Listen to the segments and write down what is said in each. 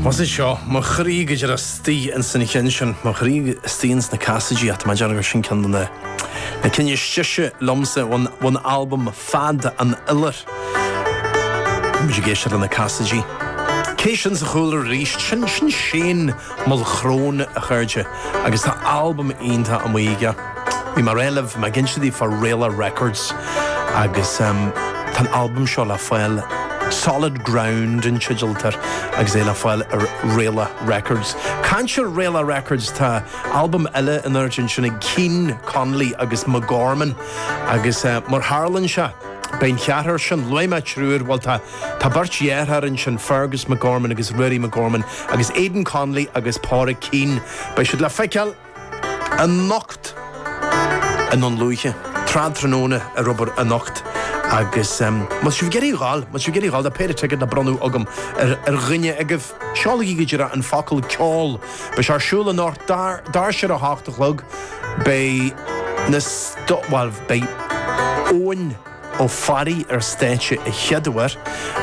Mise anseo mo chroí go díreach istigh ins an cheann sin, mo chroí istigh ins na Casaidigh ach tá mé ag déanamh gur sin ceann de na na cinn is deise liomsa ón ón albam Fead an Iolair. Muid ag éisteacht leis na Casaidigh. Cé sin sa chúlra arís? Sin sin Shane Mulchrone, a chairde. Agus tá albam iontach amuigh aige. Bhí mar a luaigh mé, ag inse daoibh fá Raelach Records agus tá an albam seo le fáil, Solid Ground an teideal air, agus é le fáil ar Raelach Records. Caint ar Raelach Records, tá albam eile in airde ansin ag Keane, Connolly agus McGorman agus mar tharlaíonn sé, beidh an cheathrar sin, luaigh mé triúr, bhuel tá. Tá beirt dheartháir ansin, Fergus McGorman agus Ruairí McGorman, agus Aidan Connolly agus Pádraic Keane. Beidh siad le feiceáil anocht i nDún Lúiche, tráth tráthnóna ar obair anocht, agus má tá sibh ag iarraidh dhul, má tá sibh ag iarraidh dhul, tá péire ticéad le bronnadh agam ar dhuine agaibh, seolaigí go díreach an focal ceoil. Beidh sé ar siúl anocht, doirse ar a hocht a chlog. Beidh na, bhuel, beidh Eoin. Ó Fearraigh ar stáitse a chéad uair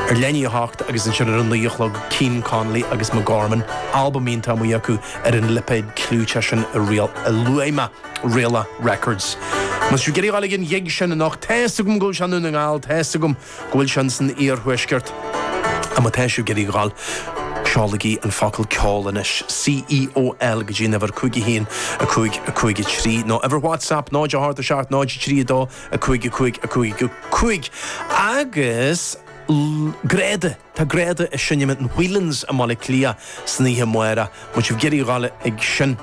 ar leath i ndiaidh a 8 agus ansin ar a naoi a chlog Keane, Connolly agus McGorman, albam iontach amuigh acu ar an lipéad clúiteach sin a luaigh mé, Raelach Records. Má tá sibh ag iarraidh dhul ag an ghig sin anocht, tá 'fhios agam go bhfuil sé i nDún na nGall, tá 'fhios agam go bhfuil sé in san iarthuaisceart, ach má tá sibh ag iarraidh dhul, seolaigí an focal ceol anois, C-E-O-L, go dtí an uimhir 5155 3 nó uimhir WhatsApp 0 8 7 0 3 2 5, 5, 5, 5 agus Greada, tá Greada ag seinm in Whelan's i mBaile Átha Cliath san oíche amárach. Má tá sibh ag iarraidh dhul ag sin,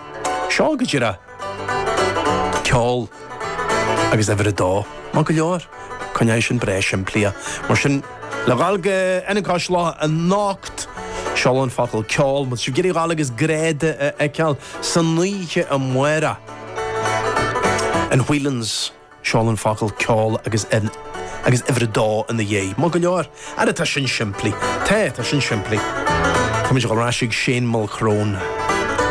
seol go díreach ceol agus uimhir 2. Maith go leor. Coinneoidh sin breá simplí. Mar sin, le dhul go Ionad Cois Locha anocht, seol an focal ceol. Má tá sibh ag iarraidh dhul agus Greada a fheiceáil san oíche amárach. In Whelan's, seol an focal ceol agus agus uimhir a dó ina dhiaidh. Maith go leor. Ara tá sin simplí. Tá, tá sin simplí. Tá muid ag dul ar ais ag Shane Mulchrone.